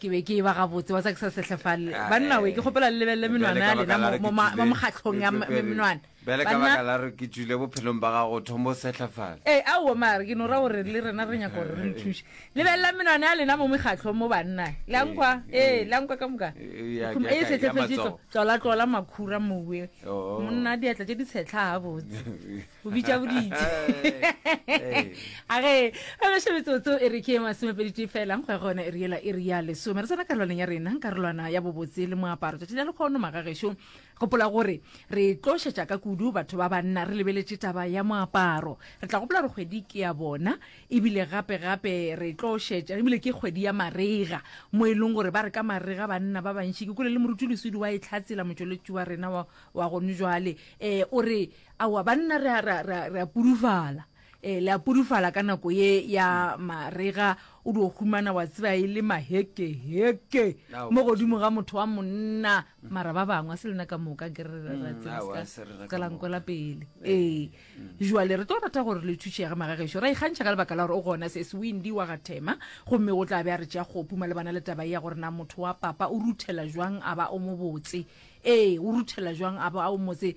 ke be ke e ba gabotse wa tsa ke sa sehlefalele Ae. banna we ke kgopela le lebelele Bjale menwana ka ya baka lena la re mo- ke mo ma- tswile- mo mokgatlhong ya ke m- tswile- menwana bjale ka Banna- baka la re ke tswile bophelong ba gago thombo o sehlafale ee aowa mare ke no ra gore le rena re nyaka gore re le thuše lebelelang menwana ya lena mo mekgatlhong mo banna le a nkwa ee le a nkwa ka moka Eh, ya- Khum- ya- ee ya setlefetše matsogo. tlolatlola makhura mowe Oo. monna diatla tše di tshetlha gabotse o bitša boditse a ge a beše metsotso e re ke e masomepeditee fela go ya gona e re yela e re ya lesome re tsena karolwaneng ya rena karolwana ya bobotse le moaparo tšatši la lekgono magagešo gopola gore re tlo šetša ka kudu batho ba banna re lebeletše taba ya moaparo re tla gopola gore kgwedi ke ya bona ebile gape gape re tlo šetša ebile ke kgwedi ya marega mo e leng gore ba re ka marega banna ba bantši ke kole le moruti lesudi wa e tlhatsela motšweletši wa rena wa gone jwale um o re Aowa, banna re a, re a, re a, re a pudufala. E, le a pudufala ka nako ye ya marega, o dio humana wa tseba e le maheke, heke, Aowa. mo godimo ga motho wa monna. Mara ba bangwe, a se lena ka moka, nke re, re, re a tseba, aowa, ska- a se rena ka ska la moka. nkwela pele. Ee. Joale, re tlo rata gore le thušege, magagešo. Re a ikgantšha ka lebaka la gore o gona, Sesi Windy wa ga Thema. Gomme o tla be a re tšea kgopu malebana le taba ye ya gore na motho wa papa o ruthela jwang a ba o mobotse. Ee, o ruthela jwang a ba o motse.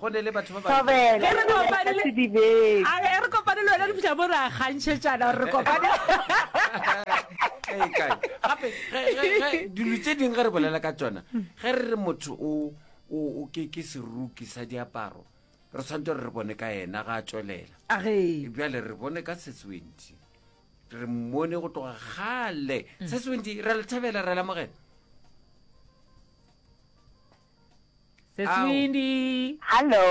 Go ne le batho ba bantsi. Thobela, Ge re ke na le ka kopane le- sedibeng. a re e re kopane le wena dipša mo re a kgantšhetšana gore re kopane Ee, kae? gape ge- ge- ge- dilo tse dingwe ge re bolela ka tsona ge re re motho o o o ke ke seruki sa diaparo re tshwanetse gore re bone ka ena ga a tswelela a ge bjale re bone ka seswenti re mmone go tloga gale seswenti re le thabela re lamogela seswindi hallo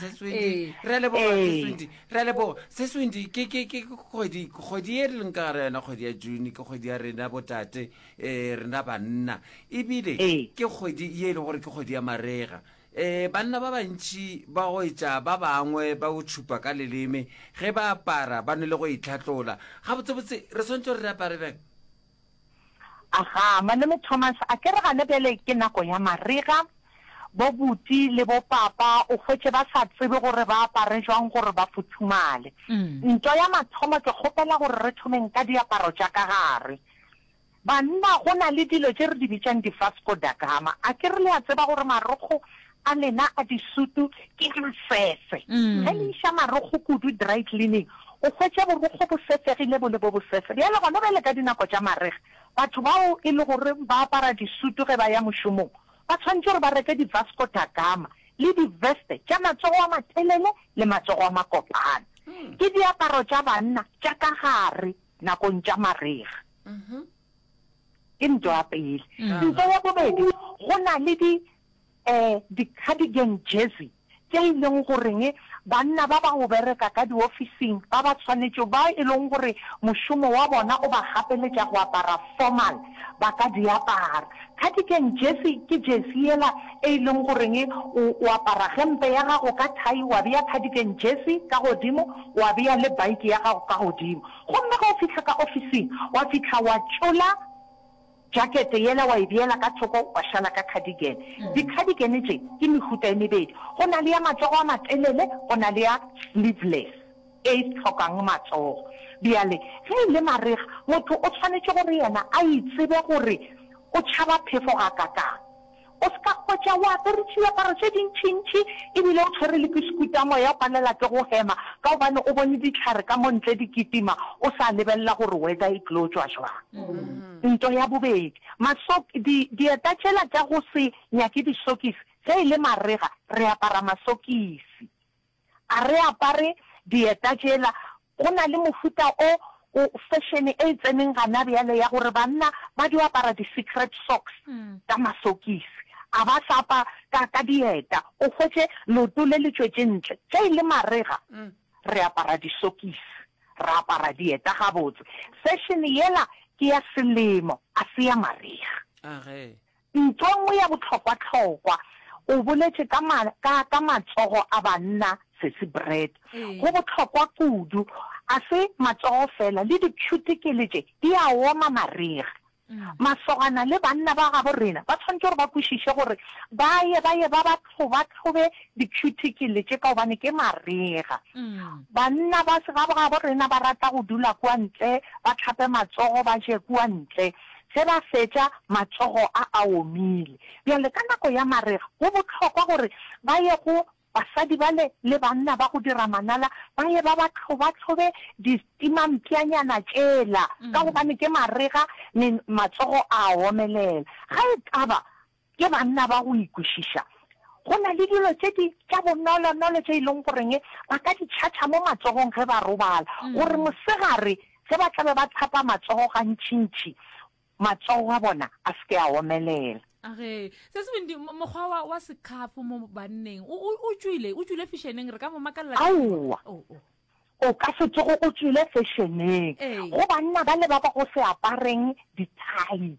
seswindi re a leboga seswindi re a leboga seswindi ke ke ke kgwedi kgwedi e re leng ka gara yona kgwedi ya june ke kgwedi ya rena botate um rena banna ebile ke kgwedi ye e le gore ke kgwedi ya marega um banna ba bantšhi ba go etša ba bangwe ba go tšhupa ka leleme ge ba apara ba ne le go itlhatlola gabotsebotse re swantse re apare bjang Aga, Malome Thomas, a ke re gane bjale ke nako ya marega, bo buti le bo papa o hwetše ba sa tsebe gore ba apare jwang gore ba futhumale. Ntwa ya mathomo ke kgopela gore re thomeng ka diaparo tša ka gare. Banna go na le dilo tše re di bitšang di-Vasco da Gama, a ke re le a tseba gore marokgo a lena a disutu ke a sese. Ge le iša marokgo kudu dry cleaning, o hwetše borokgo bo sesegile bo le bo bosese. Bjale gona bjale ka dinako tša marega, batho bao e le gore ba apara disutu ge ba ya mošomong ba tshwanetše gore ba reke di-Vasco da Gama le di-veste tša matsogo a matelele le matsogo a makopana. Ke diaparo tša banna tša ka gare nakong tša marega. Ke ntwa ya pele. Ntwa ya bobedi, go na le di Ee, di-cardigan jersey tše e leng goreng banna ba ba go bereka ka diofising ba ba tshwanetšego, ba e leng gore mošomo wa bona o ba gapeletša go apara formal, ba ka di apara. Cardigan jersey ke jersey yela e e leng goreng o, o apara gempe ya gago ka thai, wa bea cardigan jersey ka godimo, wa bea le bike ya gago ka godimo. Gomme ge o fihla ka ofising, wa fihla wa tšola. Jakete yela wa e beela ka thoko wa šala ka cardigan. Di-cardigan tše ke mehuta e mebedi, go na le ya matsogo a matelele go na le ya sleeveless e e hlokang matsogo. Bjale ge e le marega motho o tshwanetše gore yena a itsebe gore o tšhaba phefo gakakang. O se ka hwetša o apere tšiaparo tše dintšintši e bile o tshwere le pisikuta, moya o palela ke go hema ka gobane o bone dihlare ka mo ntle di kitima o sa lebelela gore weather e tlo tšwa jwang. Nto ya bobedi, masok, di, dieta tšela tša go se nyake disokisi, ge e le marega re apara masokisi. A re apare dieta tšela. Go na le mohuta o, o fashion e e tseneng gana bjale ya gore banna ba dio apara di secret socks ka masokisi. A ba sa apa ka, ka dieta. O hwetše leoto le le tšwetše ntle. Ge e le marega, re apara disokisi, ra apara dieta gabotse. Fashion yela ke ya selemo, a se ya marega. A re. Ntwa e nngwe ya bohlokwahlokwa, o boletše ka, ka, ka matsogo a banna, Sesi Brett. Go bohlokwa kudu. A se matsogo feela, le dipšhutekele tše di a oma marega. Masogana le banna ba gabo rena ba swanetše gore ba kwešiše gore ba ye, ba ye ba ba tlhobatlhobe dipšhutekele tše, ka gobane ke marega. Banna ba gabo rena ba rata go dula kua ntle, ba hlape matsogo, ba je kua ntle. Ge ba fetša, matsogo a a omile. Bjale, ka nako ya marega, go bohlokwa gore ba ye go basadi bale le banna ba go dira manala, ba ye ba ba tlhobatlhobe distimampšanyana tšela, ka gobane ke marega, me matsogo a a omelela. Ga e ka ba Ke banna ba go ikwešiša. Go na le dilo tše di, tša bonolonolo tše e leng goreng ba ka di tšhatšha mo matsogong ge ba robala, gore mosegare ge ba tla be ba hlapa matsogo gantšintši, matsogo a bona a se ke a omelela. Ge, Sesebindi, mo, mokgwa wa, wa sekhafo mo banneng o, o, o tšwile, o tšwile fešeneng, re ka mo makalela ka eng? Aowa. Oh, oh. O ka se tsoge o tšwile fešeneng. Ee. Go banna bale ba ba go se apareng dithai.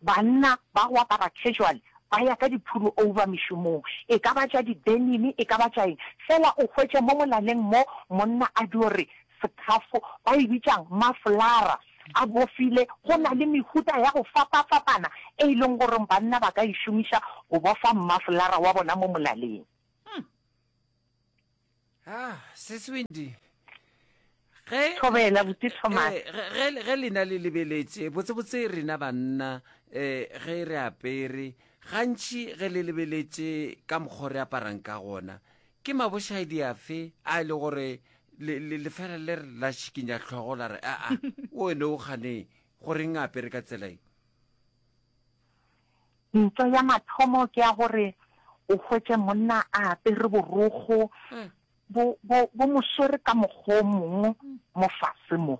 Banna ba go apara casual ba ya ka diphuru over mešomong, e ka ba tša di-denim, e ka ba tša eng. Fela o hwetše mo molaleng mo, monna a dio re, sekhafo, ba e bitša'ng, mafolara a bofile. Go na le mehuta ya go fapafapana e e leng gore banna ba ka e šomiša go bofa mmafolara wa bona mo molaleng. Ah, Sis Windy, ge Thobela, eh, botse Thomas. eh, ge- ge le- ge lena le lebeletše botsebotse rena banna eh, ge re apere gantši ge le lebeletše ka mokgwa o re aparang ka gona ke mabošaedi afe a e le gore le- le- lefela le re la šikinya tlhogo la re aa o ene o ganeng goreng a apere ka tsela e Ntwa ya mathomo ke ya gore o hwetše monna a apere borokgo bo bo bo mo swere ka mokgwa o mongwe mo fase mo.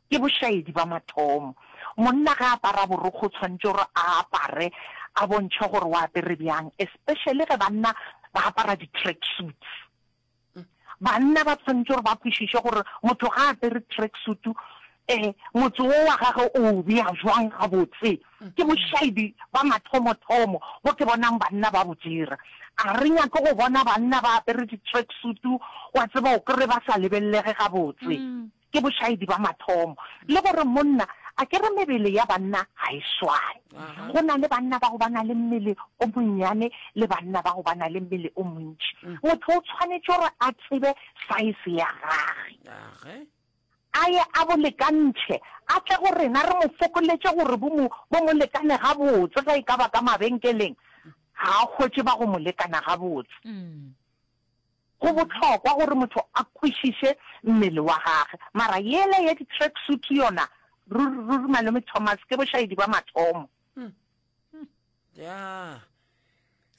Ke bošaedi ba mathomo. Monna ge a apara borokgo o tshwanetse gore a apare a bontšhe gore o apere bjang, especially ge banna ba apara di-track suits. Banna ba tshwanetse gore ba kwešiše gore motho ga a apere tracksuit, motse wo wa gage o o bea bjang gabotse. Ke bošaibi bwa mathomothomo bjo ke bonang banna ba bo dira. A re nyake go bona banna ba apere di-tracksuit, wa tseba o kry-e ba sa lebelelege gabotse. Ke bošaedi ba mathomo. Le gore monna, a ke re mebele ya banna ga e swane. Go na le banna bao ba na le mmele o monnyane le banna bao ba na le mmele o montši. Motho o tshwanetše gore a tsebe saese ya gage, a ye a bo lekantšhe, a tle go rena re mo fokoletše gore bo mo, bo mo lekane gabotse. Ge e ka ba ka mabenkeleng, ga a hwetše ba go mo lekana gabotse. Go bohlokwa gore motho a kwešiše mmele wa gage. Mara yela ya di track suit yona, ruri, ruri Malome Thomas, ke bošaedi bwa mathomo. Ya.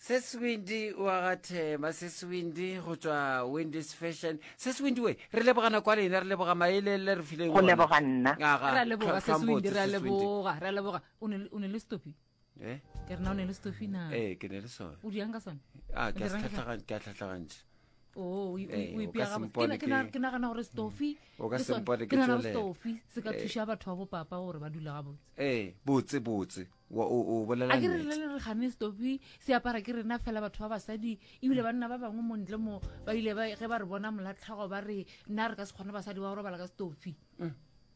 Seswindi wa ga Thema, Seswindi go tšwa Wendy's Fashion. Seswindi we, re leboga nako ya lena, re leboga maele le re fileng Go ona. leboga nna. Aga, Re a leboga, Tlhwa- Seswindi, Tlhwambotse, re a Seswindi. leboga, re a leboga. O ne le- o ne le stopi? eh? ke rena o ne le stofi na ee eh, ke ne le sone o diang ka sone a ah, ke a tlhatlhagantšha Oh, eh, ke nagana gore stofi ke nagana gore stofi se ka eh. thuša batho ba bopapa gore ba dula ga botse ee botse botse o bolela a ke re le re gane stopi se apara ke rena fela batho ba basadi ebile banna ba bangwe mo ntle mo ba ile ge ba re bona molatlhago ba re nna re ka se kgone basadi ba go robala ka stopi mm.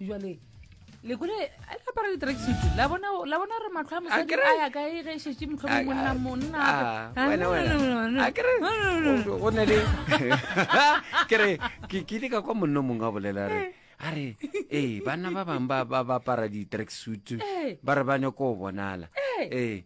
jale lekole a le apara di-tracksuit la bona la bona re matlho a mosadi a ya kae ge e šetse motlho monna monna go ne le kere ke kile ka kwa monno mongwe a bolela re a re ee banna ba bangwe ba apara di-tracksuit ba re ba nyako go bonala ee